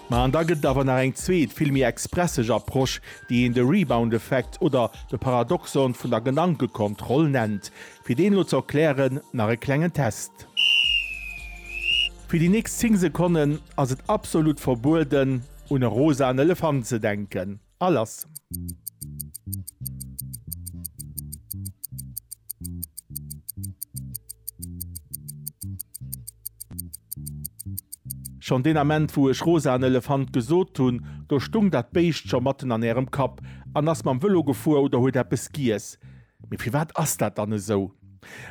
Ma an da gëtt et awer nach eng zweet, vill méi expresseg Approche, déi een de Rebound-Effekt oder de Paradoxon vun der Gedankekontroll nennt. Fir deen elo ze erklären, nach e klengen Test. Fir déi nächst 10 Sekonnen ass et absolut verbueden, un e rosaen Elefant ze denken. A lass. Schonn deen Ament, wou ech rosa an Elefant gesot hunn, do stung dat Béischt scho matten an Ärem Kapp an ass mam Vëlo gefuer oder huet eppes giess. Mee firwat ass dat dann esou?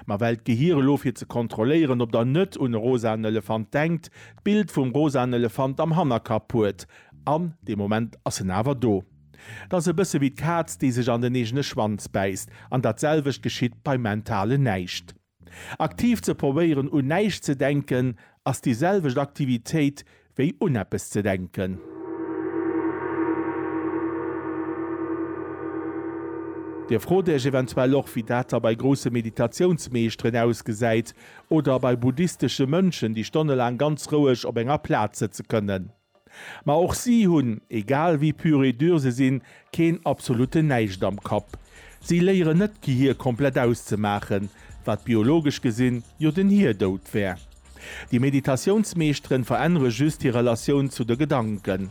Ma well d'Gehir elo, fir ze kontrolléieren, ob Der net un e rosaen Elefant denkt, d'Bild vum rosaen Elefant am Hannerkapp huet. An dee Moment ass en awer do. Et ass e bësse wéi d'Kaz, déi sech an den eegene Schwanz bäisst. An dat selwecht geschitt beim mentalen Näischt. Aktiv ze probéieren un näischt ze denken, ass déi selwecht Aktivitéit wéi un eppes ze denken. Dir frot Iech eventuell och, wéi dat da bei grousse Meditatiounsmeeschteren ausgesäit oder bei buddhistesche Mönchen, déi stonnelaang ganz roueg op enger Plaz sëtze kënnen. Ma och si hunn, egal wéi pur et dur se sinn, keen absolute Näischt am Kapp. Si léieren net d'Gehir komplett auszemaachen, wat biologesch gesinn jo den Hierdout wär. Déi Meditatiounsmeeschteren verännere just hir Relatioun zu de Gedanken.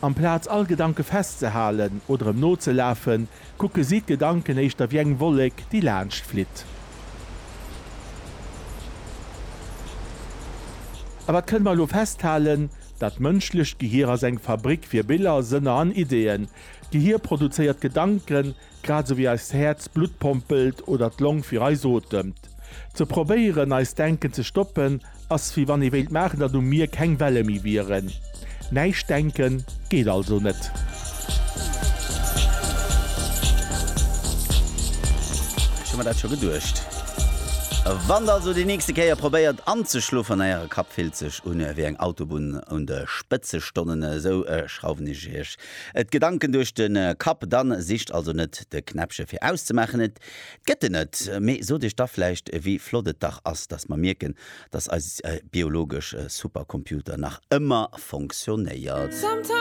Amplaz all Gedanke festzehalen oder em nozelafen, Kucke si d'Gedanken éischter wéi eng Wollek, déi laanscht flitt. A wat kënne mer elo festhalen? Dat d'mënschlecht Gehir ass eng Fabrik fir Biller, Sënner an Ideeën. D'Gehir produzéiert Gedanken, grad esou wéi eist Häerz Blutt pompelt oder d'Long fir eis otemt. Ze probéieren eist Denken ze stoppen ass wéi wann ee wéilt maachen datt um Mier keng Welle méi wieren. Näischt denken geet also net. Ech hu mer dat scho geduecht. Wann der also déi nächste Kéier probéiert anzeschlofen, Äre Kapp fillt sech un wéi eng Autobunn un de Spëtzestonnen, esou schrauwen ech Iech d'Gedanken duerch de Kapp. Dann sicht also net de Knäppche fir auszemaachen, et Gëtt en net, mee sot Iech da vläicht, wéi flott et dach ass, datt mer mierken, datt eise biologesch Supercomputer nach ëmmer fonctionnéiert.